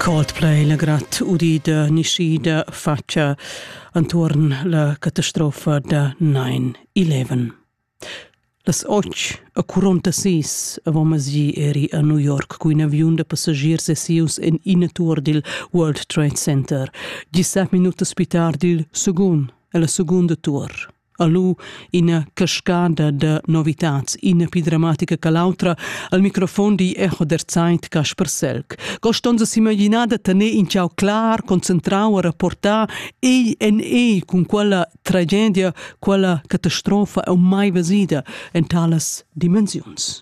Coldplay la grat udida niscida faccia antuorn la catastrofa da 9-11. Las 8 a 46 avomasi eri a New York cu in aviun da passagiers esius en ina tour dil World Trade Center, 17 minutas pitar dil secund e la segunda tour. a lu ina cascada da novitads, ina pi dramatica che l'autra, al microfon di Echo der Zeit Kasper Selk. Cost onza s'imaginar da tener in ciao clar, concentrau a rapportar ei en ei cun quella tragedia, quella catastrofa e mai vesida en talas dimensiuns.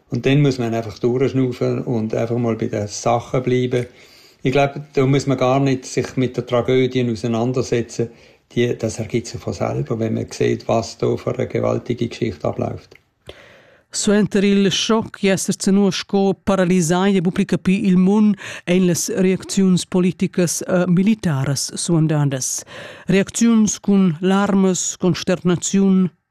Und dann muss man einfach durchschnaufen und einfach mal bei den Sachen bleiben. Ich glaube, da muss man gar nicht sich mit den Tragödien auseinandersetzen. Die, das ergibt sich von selber, wenn man sieht, was da für eine gewaltige Geschichte abläuft. Suenter il schoc esser zenua sco paralisai e buca capi il mun ein las reacziuns politicas e militaras suandandas. Reacziuns cun larmas, consternaziun,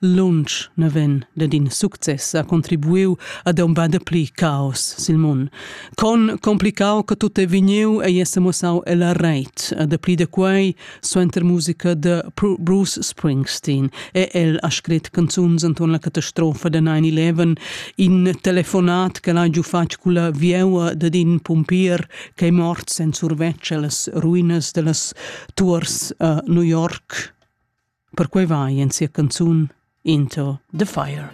lunsch naven dad in success ha contribuiu ad embà dapli caos sil mun. Con complicau che tut è vegniu ei essa mussau ella reit, a dapli da quei suenter musica de Bruce Springsteen e el ha scret canzuns anton la catastrofa da 9-11, in telefonat che l'ha giu fatg con la vieua dad in pompier che è mort senza survetsch las ruinas dellas tours a New York. Perquei va ei en sia canzun Into the Fire.